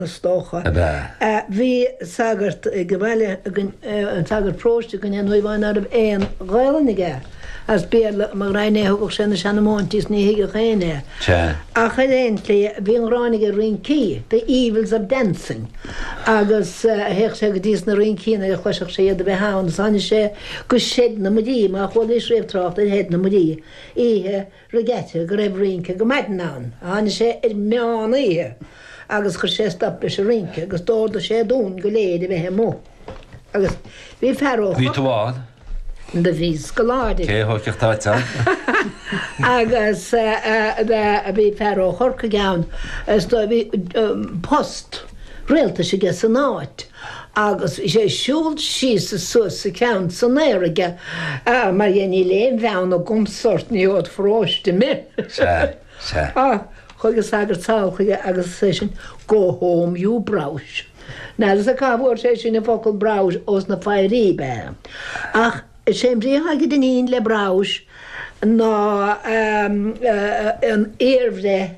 is dócha. ab ea? Bhí sagart ag an bhaile againn, an sagart próiste againn, an Naomh Eoin, ná raibh aon Ghaelainn aige as Béarla mo ghraidhin é, thugadh sé na seanamóintí is ní thuigeadh éinne é. Ach ar aon tslí, bhí an ghráin aige ar rincí, the evils of dancing, agus théadh sé go dtí sna rincí nuair a chloiseadh sé iad a bheith ann is tháinig sé go Seid na Muirí, má chualaís riamh trácht ar Sheid na Muirí, oíche. Regatta, go raibh rince go maidin ann. Tháinig sé ar meán oíche agus chuir sé stop leis an rince agus d'órdaigh sé dúinn go léir a bheith amuigh. Agus bhí fear ó. Bhí tú ann? Do bhí scoláirí. Cé thóigfeadh toit ann? Agus bhí fear ó Chorcaigh ann is do bhí post rialtais aige san áit. agus bhí sé ag siúl síos is suas is a cheann san aer aige mar dhea níl aon bheann agamsa ort ní od' pharóiste me. Sea, sea. Á, chuaigh an sagart sall chuige agus is é sin Go home you broghais. N'fheadarsa cá bhfuair sé sin an focal broghais ós na fairí be. Ach is é an bhrí atá ag Dinneen le broghais ná an iarbhreith,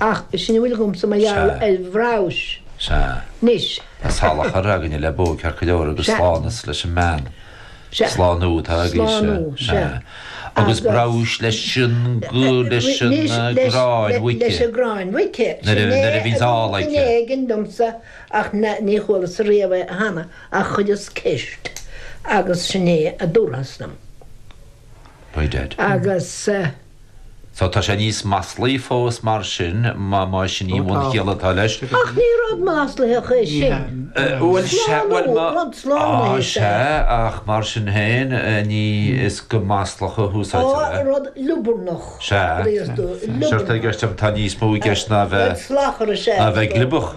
Ach b'shin a bhfuil agamsa mar gheall ar bhroghais anois. Tá salachar againne le bó ceart go leor agus slánas leis an mbean. Slánú atá agaibhse. Agus broghais leis an gcráin mhuice. Leis an gcráin mhuice. Sin é a bhíonns ál aici. Sin é a bhí éigin domsa ach ní chualasa riamh é cheana ach chuireas ceist agus sin é a dúrthas dom. By dad. Agus. So tá sé níos maslaí fós mar sin, más in í an bhunchiall atá leis. Ach ní rud maslaitheach é sin. Slánú, rud slánaithe is ea é. Á sea, ach mar sin féin, ní is go maslach a húsáidtear é. Á, rud liobarnach, bhríos dúinn, liobarnach. Sea, tá níos mó i gceist ná a bheith gliobach.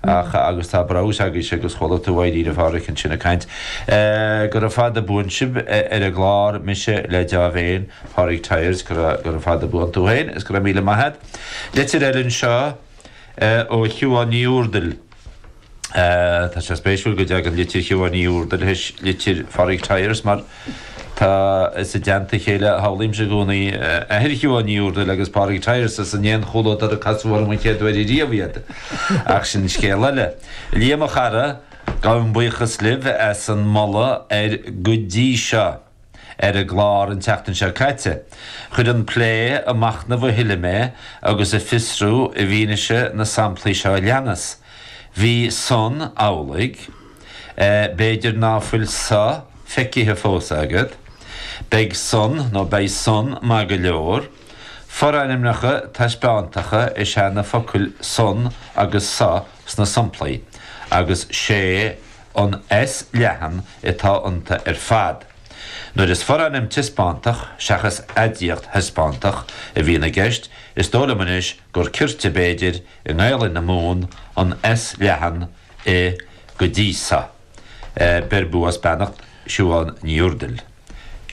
Ach, agus tá broghais agaibhse agus chuala tú Éirí na bhFearg ansin ag caint, gura fada buan sibh ar an gclár, mise le deá-mhéin, Pádraig Tyers, gura fada buan tú féin is go raibh míle maith a't. Litir eile anseo ó Shiubhán Ní Úrdail. Tá sé spéisiúil go dtagann litir Shiubhán Ní Úrdail théis litir Phádraig Tyers mar, Tá, is i dteannta a chéile, a shamhlaímse i gcónaí, athair Shiobhán Ní Úrdail agus Pádraig Tyers, is in aon chomhluadar a casadh orm an chéad uair riamh iad, ach sin scéal eile. Liam, a chara, gabhaim buíochas libh as an moladh ar 'Go dtí seo' ar an gclár an tseachtain seo caite. Chuir an plé ag machnamh a thuilleadh mé agus ag fiosrú i bhfianaise na samplaí seo a leanas. Bhí san amhlaidh. B'fhéidir ná fuil so feicithe fós agat. Beidh san, nó beidh son, maith go leor. Forainmneacha taispeántacha is ea na focail san agus so sna somplaí, agus 'sé an S leathan atá iontu ar fad. Nuair is forainm taispeántach seachas aidiacht thaispeántach a bhíonn i gceist, is dó' liom anois gur cirte, b'fhéidir, i nGaelainn na Mumhan, an S leathan, i. go dtí sa. Beir bua is beannacht Siobhán Ní Urdail.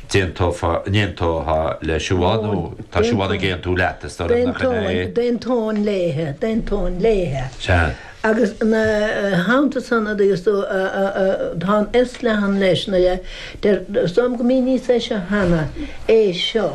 D'aontófá, n'aontóthá le Siobhán nó tá Siobhán ag aontú leat, is dóigh liom, nach in é? D'aontóinn léithe, d'aontóinn léithe. Sea. Agus ina theannta san, a dúirt tú, tá an S leathan leis, is dóigh liom gur mhíníos é seo cheana, é seo.